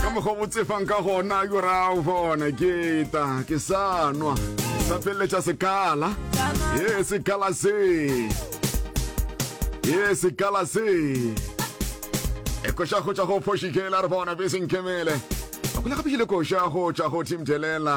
ka mokgwa bo tsefang ka gona ke ra o bona ke ta ke sa nwa sa feleletša sekala e sekala se e sekala se e koša go tša go fošikela re bona be senkemele a kula gape ile koša go tša go thimthelela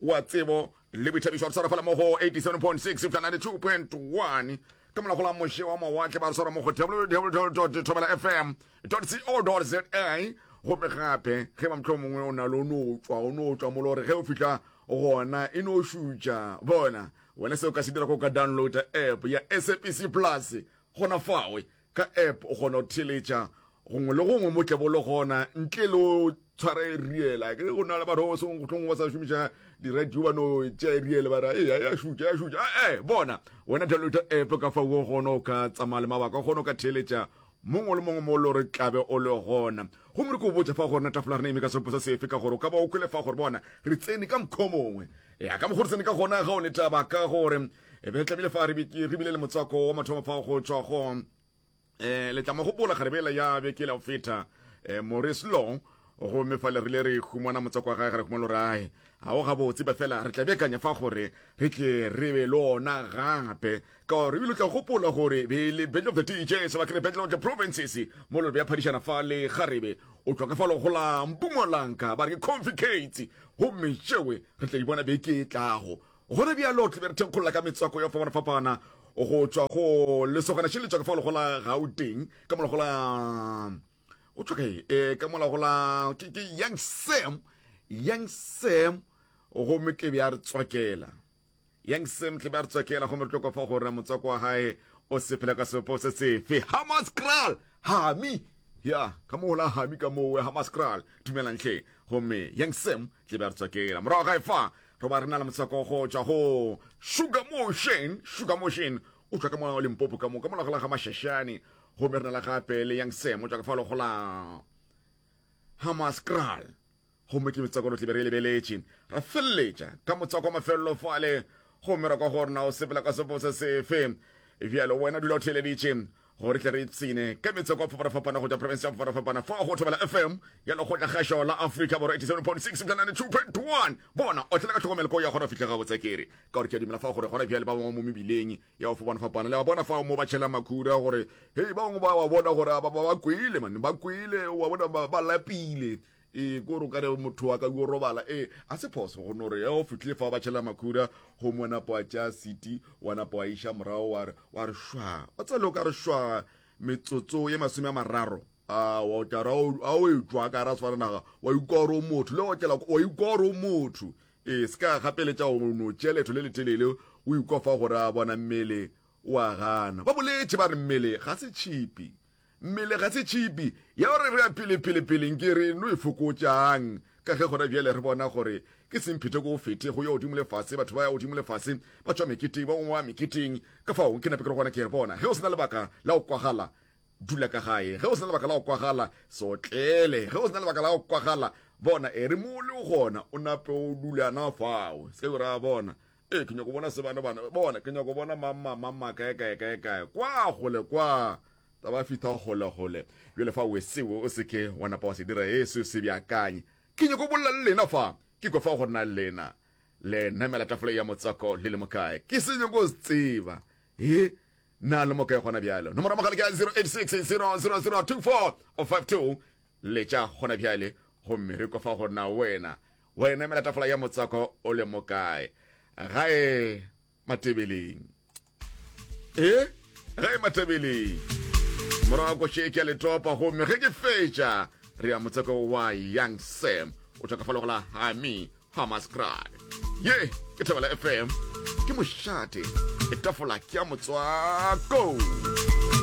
wa tsebo le boithabišo re swarafala mo go 87.6 eupša 92.1 ke molago la moše wa mawatle ba re swara mo go www thobela fm co za gope gape ge mamtlho mongwe o na le o no tswa o no tswa molo gore ge o fitlha gona e no šutša bona wena se o ka se dira go ka downloada app ya sabc plus gona fawe Ka app o kgona go theletša gongwe le gongwe mo tlebo le gona ntle le o tshwara e riela ke go na le batho ba seng gotlhong ba sa šomiša diradio ba no tša e riele ba ra e ya šutša ya šutša ee eh, bona wena download app ka fa o gona o ka tsamaya le mabaka o kgona o ka theletša mongwe le mongwe mo le gore tlabe o le gona gomme re ko botsa fa gona tafola rena eme ka sepo sa sefe ka gore o ka ba o kwele fa gore bona re tsene ka mokgwa mongwe ya ka mokgwa re tsene ka gona ga o ne taba ka gore e be tlamile fa re bile le motswako wa mathomo fa go tšwa go um eh, letla mogopola garebela ya bekele go feta um morris long gomme fa le rile re humana motswako wa gae ga re humana lorae ga o gabotse ba fela re tla bekanya fa gore re tle re be le ona gape ka gore ebile o tla gopola gore be le battle of the dj seba kere battle of the provinces mo lore ya phadišana fa le garebe o tlwa ka fa logolang pumolanka ba re ke conficates gomme tšewe re tla di bona beke e tlago Gona bjalo tla be re thenkgolola ka metswako ya fapana-fapana go tšwa go lesogana še le tšwa ka fa lego la Gauteng ka molago la go tšwa kae e ka molago la ke ke Young Sam Young Sam go me tle bja re tswakela Young Sam tle bja re tswakela go me re tlo kwa fa gore motswako wa hae o se phela ka sepo se sefe Hamas Kral Hami ya ka mo la Hami ka mo Hamas Kral dumelang hle go me Young Sam ke be re tsokela morago ga efa re ba re na le motswako go tšwa go sugar motion sugar motion o tšwa ka moa o limpopo ka moka mola go la ga mashashane gomme re na le gape le yang sem o tšwa ka fa logo la hamascral gomme ke metswako lo tlebe re lebeletše ra feleletša ka motswako wa mafelelo fale gomme ra kwa go rena o sepela ka sefo se sefe bjalo wena dula o theleditše gore tle re ipshine ka metseko a fapanafapana go tša province ya fapanafapana fa go thobela fm ya lekgotla kgašo la africa borwa 87.6 bja 92.1 bona o tlela ka tlhokomelo ko ya gona fitlha ga botsekere ka gore ke a dumela fa gore gona bjale ba bangwe mo mebileng ya go fapanafapana le ba bona fa mo ba tšhela makhuda gore hei ba bangwe ba wa bona gore ba kwele mane ba kwele wa bona ba lapile ee ko gore o kare motho wa ka yo robala ee a se phoso go no re ya o fitlhile fa ba tšhela makhuda go mo napo wa tšea city wa napo wa iša morago wa re wa re shwa o tsele o ka re shwa metsotso ye masome a mararo wa tara a o etswa ka ra tshwara naga wa ikoro motho le go tlela wa ikoro motho ee se ka gapeletša go no tšea letho le letelele o ikofa gore a bona mmele wa gana ba boletše ba re mmele ga se tšhipi Mmele ga se tšhipi ya gore re a pele-pele-pele nke re no e fokotšang, ka ge gona bjale re bona gore ke semphetho ko go fete go ya godimo le fase, batho ba ya godimo le fase, ba tšwa meketeng, ba bangwe ba meketeng. Ka fao ke nape ke re gona, ke re, Bona, ge o se na lebaka la go kwagala, dula ka gae. Ge o se na lebaka la go kwagala, se otlele. Ge o se na lebaka la go kwagala, bona, e re mo o lego gona, o nape o dula na fao. Se ka ke o ra, Bona, ee ke nyako bona se bana bana bona ke nyako bona mamma mamma kae kae kae kae kwa gole kwa ta ba fitha gole gole bjale fa wesewe o seke wa napa wa se dira ee seo se bjakanye ke nyako bolela le lena fa ke kwa fa gore na lena le namela tafole ya motswako le le mokae ke se nyako se tseba ee na le mokae gona bjalo nomoro mogala ke 0860002452 le tša gona bjale gomme re kwa fa gore na wena Wena emela tafola ya motswako o le mokae? Gae Matebeleng. E? Gae Matebeleng. Morago ko šeke ya letopa gomme ge ke fetša re ya motswako wa Young Sam o tlhokafalo go la Hami Hamascry. Ye ke Thebela FM ke mošate e tafola ke ya motswako.